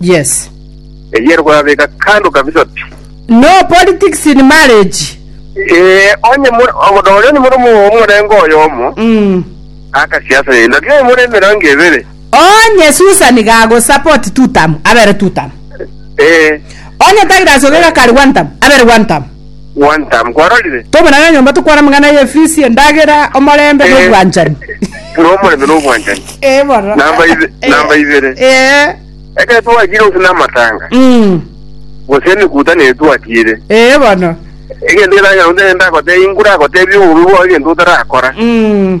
Yes. Eyie ere koyabeka kando kabisa pi. No politics in marriage. Ee, onye mure- o- nonye onye mure omo- omorengo oyomo, Mm. akasiasa yaino, lakini onye mure emerengo ebere, Onye Susan gago support two term, abere two term. ee, Onye Douglas ogega kari one term, abere one term. Gwantam, kwarorire? Tobe naye nyomba tokwara amang'ana y'efisi, endagera, omorembe, na Eh, obwanchani. Buna omorembe na obwanchani. Eh, bono. Namba ibe- Eh, namba ibere. Eh. Ekero twachire gose namatanga, Mm. gose emekuta niye twatiire. Eh, bono. Egento ekero nyasae ndagotebia, inkwe ndagotebia obobe bwao egento otarakora. Mm.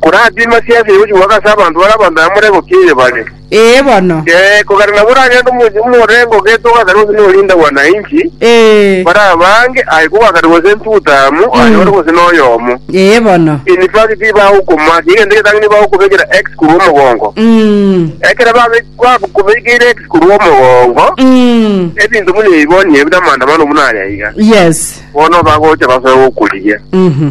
Koratii masiasi aye gochigwaka ase abanto bare abanto aye morego ki eye bare? Ee bono. Ee, kogera nabo oragende omo- omorengo ogeete ogakare gose n'orindagwa na inki, Ee. barabange aye kogakare gose ntutamu aye ore gose noyomo. Ee bono. In fact, tibagokomaka, egento egetang'ani bagokobekera X korwa omogongo. Mm. Ekero babe- bagokobekeire X korwa omogongo, Mm. ebinto buna ebi bono niyo bire amaandamano buna aya iga. Yes. Bono bagocha basoe gokorigia. Mhm.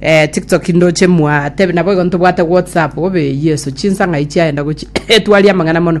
Eh, tiktok ndoche mwa tebe nabo igo ntobwate whatsapp obe yeso chinsang'ai chiaenda gochi etwari amang'ana mono